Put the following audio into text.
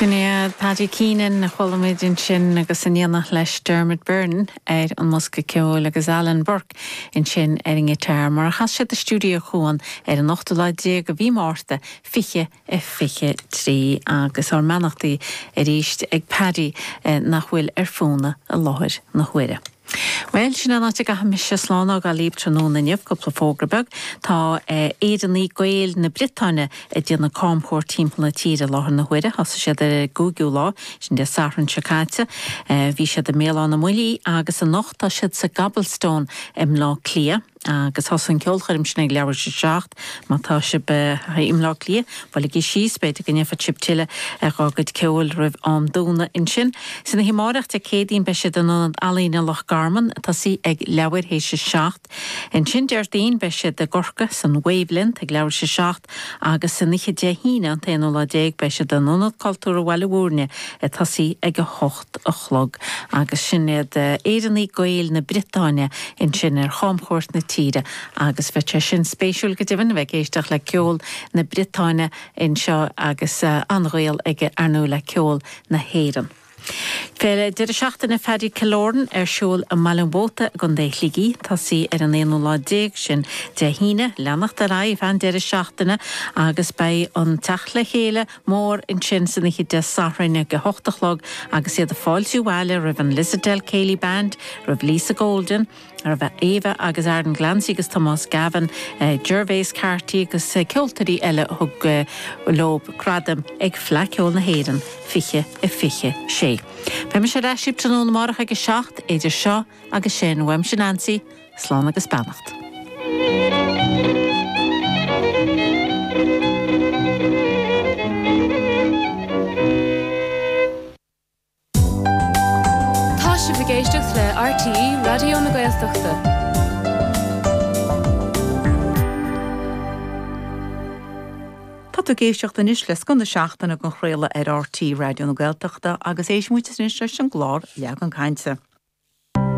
Sin iad Paddy Keenan, a chuala muid ansin, agus in éineacht leis Dermot Byrne ar an mbosca ceoil agus Alan Burke ansin ar an ngiotar, mar a chas siad i Stiúideo Cuan ar an ochtú lá déag de mhí Márta 2023. Agus ár mbeannachtaí arís ag Paddy, nach bhfuil ar fónamh i láthair na huaire. Bhuel, sin an áit a gcaithfidh mise slán a fhágáil libh tráthnóna inniu, cúpla fógra beag. Tá Éireannaigh, Gaeil na Briotáine ag déanamh camchuairt timpeall na tíre i láthair na huaire. Thosaigh siad ar an gcúigiú lá, sin Dé Sathairn seo caite. Bhí siad i mBéal Átha na mBuillí agus anocht tá siad sa gCobblestone i mBleá Cliath. Agus thosaigh an cheolchoirm sin ag leathuair théis a seacht. Má tá sibh i mBleá Cliath, buailigí síos, b'fhéidir go ndéanfadh sibh tuilleadh dhá gcuid ceoil roimh am dúnadh ansin. San oíche amáireach, Dé Céadaoin, beidh siad in Ionad Ealaíne Loch Garman. Ag tosaí ag leathuair théis a seacht. Ansin Déardaoin, beidh siad i gCorcaigh san Wavelength ag leathuair théis a seacht. Agus san oíche Dé hAoine, an t-aonú lá déag, beidh siad in Ionad Cultúrtha Bhaile Mhúirne ag tosaí ag a hocht. a chlog agus sin iad Éireannaigh, Gaeil na Briotáine ansin ar chamchuairt na tíre agus bheadh sé sin spéisiúil go deimhin, a bheith ag éisteacht le ceol na Briotáine anseo agus an-ghaol aige, ar ndóigh, le ceol na hÉireann. Féile, Deireadh Seachtaine Phaddy Killoran ar siúl i mBaile an Mhóta i gContae Shligigh, tosaí ar an aonú lá déag, sin Dé hAoine, leanacht ar aghaidh feadh an deireadh seachtaine agus beidh an teacht le chéile, mór ansin san oíche Dé Sathairn ag a hocht a chlog agus iad ag fáiltiú abhaile roimh an Lissadell Céilí Band, roimh Lisa Golden, roimh Ava agus Aaron Glancy agus Tomás Gavin, Gervais Carty agus ceoltóirí eile a thug leo gradaim ag Fleadh Cheoil na hÉireann 2026. Beidh mise ar ais libh tráthnóna amárach ag a seacht, idir seo agus sin, uaimse Neansaí, Slán agus beannacht. Tá sibh ag éisteacht le RTÉ Raidió na Gaeltachta. Tá tú ag éisteacht anois le scoth na seachtaine dhá chraoladh ar RTÉ Raidió na Gaeltachta agus éistimis anois leis an gclár Leagan Cainte.